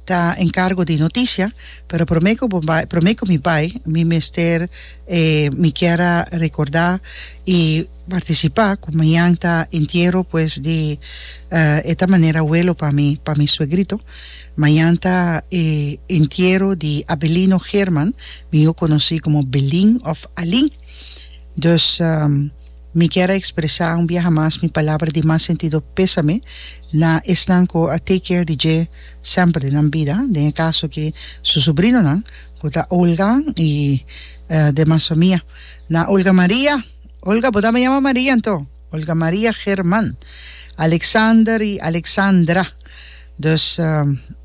ta encargo di noticia pero prome cu bo bai prome cu mi bai mi mester e mi kier a recorda y participa cu mañan ta entiero pues di e ta manera welo pa mi pa mi suegrito mañan ta e entiero di Abelino German mijo conoci como Belin of Alin dus Mi kier a expresa un biaha mas mi palabra di mas sentido pesame na esnan cu a take care di dje semper den nan bida, den e caso aki su sobrinonan cu ta Olga y demas famia. Na Olga Maria, Olga bo tambe yama Maria anto? Olga Maria German, Alexander y Alexandra. Dus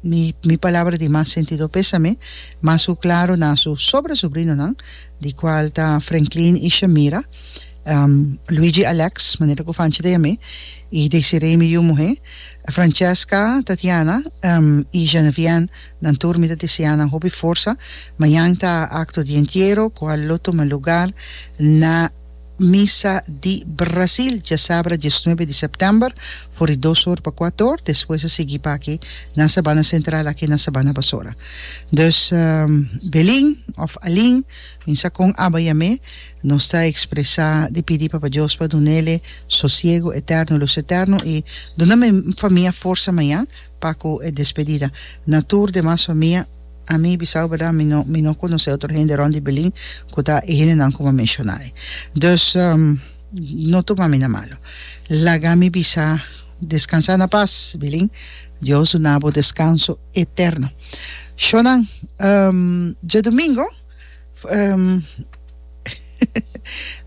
mi mi palabra di mas sentido pesame mas cu claro na su sobra sobrinonan di cual ta Franklin y Shamira. Um, Luigi Alex, manera ku Fanchi ta yam'é, i Desiree mi yu muhé. Francesca, Tatiana, um, i Geneviène, nan tur mi ta deseá nan hopi forsa. Mañan ta akto di entiero ku a lo tuma lugar na Misa di Brasil, djasabra diesnuebe di sèptèmber, for di dos or pa kuat or, despues a sigui pa aki na Sabana Sentral, aki na Sabana Basora. Dus, um, Belin òf Alin, mi sa kon aba yam'é. Nos ta expresa di pidi Papa Dios pa dunele sosiego eterno, lus eterno y duna mi famia forsa maña pa cu e despedida. Na tur demas famia, ami bisao berdad mi no mi no conoce otro hende rond di Belin cu ta e hendenan cu mi a menciona ei. Dus no tuma mi na malo. Laga mi bisa descansa na paz, Belin. Dios duna bo descanso eterno. Shonan, djadomingo.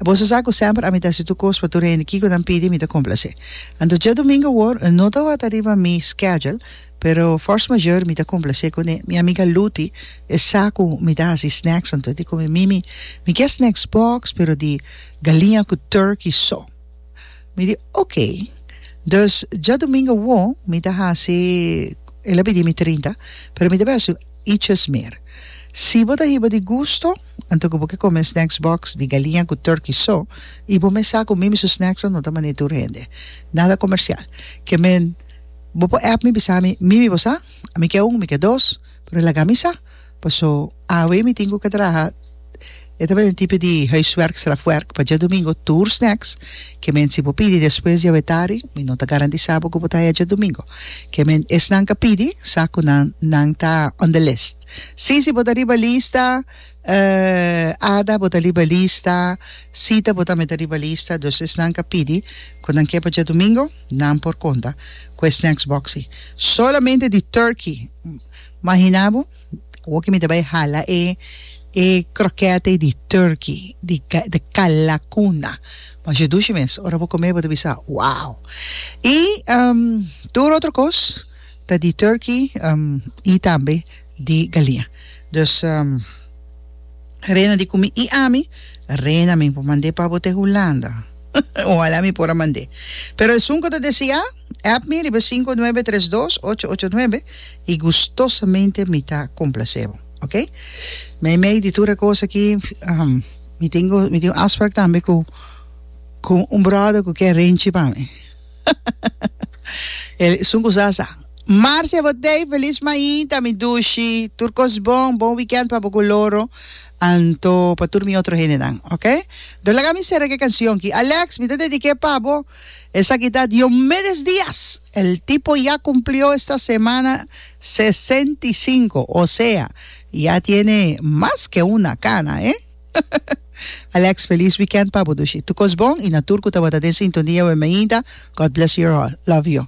Boso sa ku semper a mi ta hasi tur kos pa tur hende kiko nan pidi mi ta komplase. Anto dje domingo awor no tabata riba mi skedjul pero force majeure mi ta komplase kuné mi amiga Luti e sa ku mi ta hasi snacks anto e di ku mi Mimi mi kia snacks box pero di galiña ku turkey so. Mi di, Ok. Dus dja domingo awo mi ta hasi, el a pidi mi trinta, pero mi ta bes un iches mer. Si bo ta hiba di gusto, anto ku bo ke kome snacks box di galiña ku turkey so, i bo mes sa ku mi mi su snacksnan no ta mane tur hende. Nada komersial. Ke men, bo por app mi bisa mi, mi mi bo sa? Mi ke un, mi ke dos, pero laga mi sa. Paso awe mi tin cu ke traha e tabata e tipo di huiswerk straf werk pa djadomingo tur snacks ke men si bo pidi despues di awe tari mi no ta garantisa bo cu bo ta haya djadomingo ke men esnan ka pidi sa cu nan nan ta on the list si si bo ta riba lista ada bo ta riba lista sita bo tambe ta riba lista dus esnan ka pidi cu nan ke pa djadomingo nan por conta cu e snacks boxy solamente di turkey. Mahina bo, oki mi ta bai hala e e krokèt'ei di turki, di di kalakuna, masha dushi mes, ora bo kom'e bo ta bisa, wow! I tur otro kos ta di turki i tambe di galinja. Dus rena di kumi i ami rena mi por mand'e pa bo te Hulanda, ohalá mi por a mand'e, pero esun ku ta deseá. App mi riba sinku nuebe tres dos ocho ocho nuebe y gustosamente mi ta complase bo ok meimei di tur e cos aki mi tin mi tin un afspraak tambe cu cu un brother cu ke renchi pa mi el esun cu sa sa Marcia bo tey feliz mainta mi dushi tur cos bon bon weekend pa bo cu loro anto pa tur mi otro hendenan ok do laga mi cera ke cancion ki Alex mi ta dedique pa bo. Esaki ta Diomedes Diaz, el tipo ya cumplió esta semana sesenta i sinku, o sea, ya tiene mas ke una cana, eh! Alex, feliz weekend pa bo dushi. Tukos bon y na tur cu tabata den sintonia wmeinta, God bless your all. Love you.